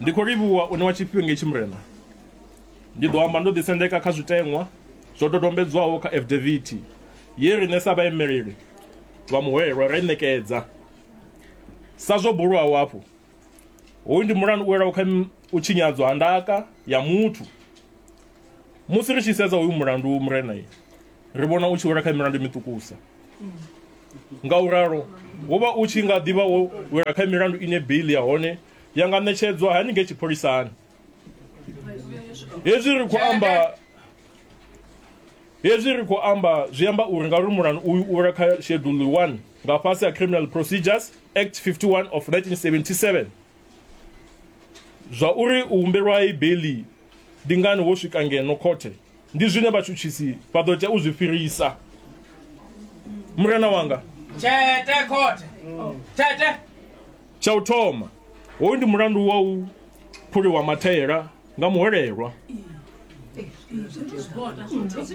Ndi khou livhuwa u ṋewa tshifhinga itshi Murena. Ndi ḓo amba ndo ḓisendeka kha zwiteṅwa zwo dodombedzwaho kha afidavithi ye riṋe sa vhaimeleli vha muhwelelwa ra i ṋekedza. Sa zwo bulwaho afho, hoyu ndi mulandu u welaho kha u tshinyadzwa ha ndaka ya muthu. Musi ri tshi sedza hoyu mulandu Murena, ri vhona u tshi wela kha milandu miṱukusa. nga u ralo wo vha u tshi nga ḓivha wo wela kha milandu ine beiḽi ya hone ya nga ṋetshedzwa haningei tshipholisani hezwi ri khou amba hezwi ri khou amba zwi amba uri ngauri mulandu uyu u wela kha shedulu 1 nga fhasi ha criminal procedures act 51 of 1977 zwa uri u humbelwa i beiḽi ndi ngani wo swika ngeno khothe ndi zwine vhatshutshisi vha ḓo tea u zwi fhirisa murena wanga tshete khothe tshete tsha u thoma hoyu ndi mulandu wa u phuliwa mathaela nga muhwelelwa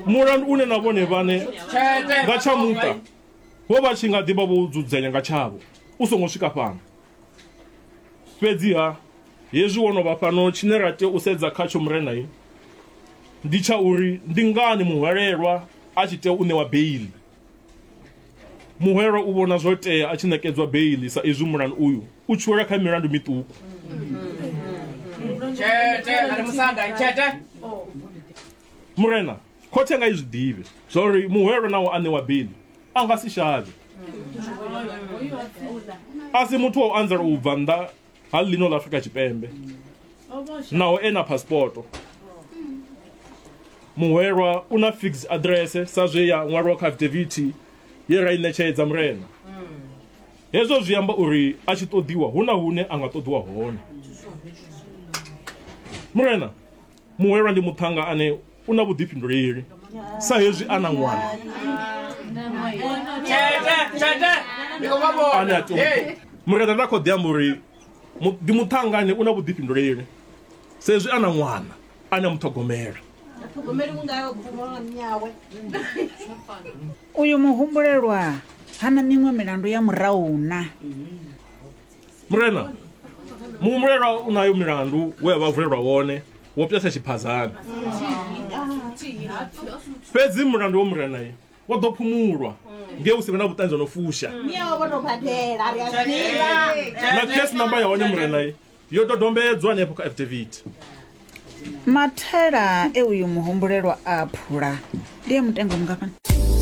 mulandu une na vhone vhane tshete nga tsha muṱa vho vha tshi nga ḓivha vho dzudzanya nga tshavho u songo swika fhano fhedziha hezwi wo no vha fhano tshine ra tea u sedza khatsho murenai ndi tsha uri ndi ngani muhwalelwa a tshi tea u ṋewa beili muhwelwa u vhona zwo tea a tshi ṋekedzwa beili sa izwi mulani uyu u tshi wela kha milandu miṱuku murena Khothe nga i zwi ḓivhe zwauri muhwelwa naho a ṋewa beiḽi a nga si shavhe. A si muthu wa u anzela u bva nnḓa ha ḽino ḽa Afrika Tshipembe naho e na phasipoto. Muhwelwa u na fixed address sa zwe ya ṅwalwa kha afidavithi ye ra i ṋetshedza Murena. Hezwo zwi amba uri a tshi ṱoḓiwa hu na hune a nga ṱoḓiwa hone. Murena, Muhwelwa ndi muṱhannga ane u na vhuḓifhinduleli sa hezwi a na ṅwana ane a tea mureda nda khou ḓi amba uri mu- ndi muṱhannga ane u na vhuḓifhinduleli sa hezwi a na ṅwana ane a muṱhogomela uyu muhumbulelwa hana miṅwe milandu ya murahu na murena muhumbulelwa u nayo milandu we a vha vulelwa wone wo pjasa tshiphazani fhedzi mulandu wo murena ye wo ḓo phumulwa nge hu si vhe na vhuṱanzi ho no fusha Miyawe vho no badela ri a ḓivha. na case number ya hone murena ye yo dodombedzwa hanefho kha affidavit mathela e uyu muhumbulelwa a phula ndi e mutengo mungafhani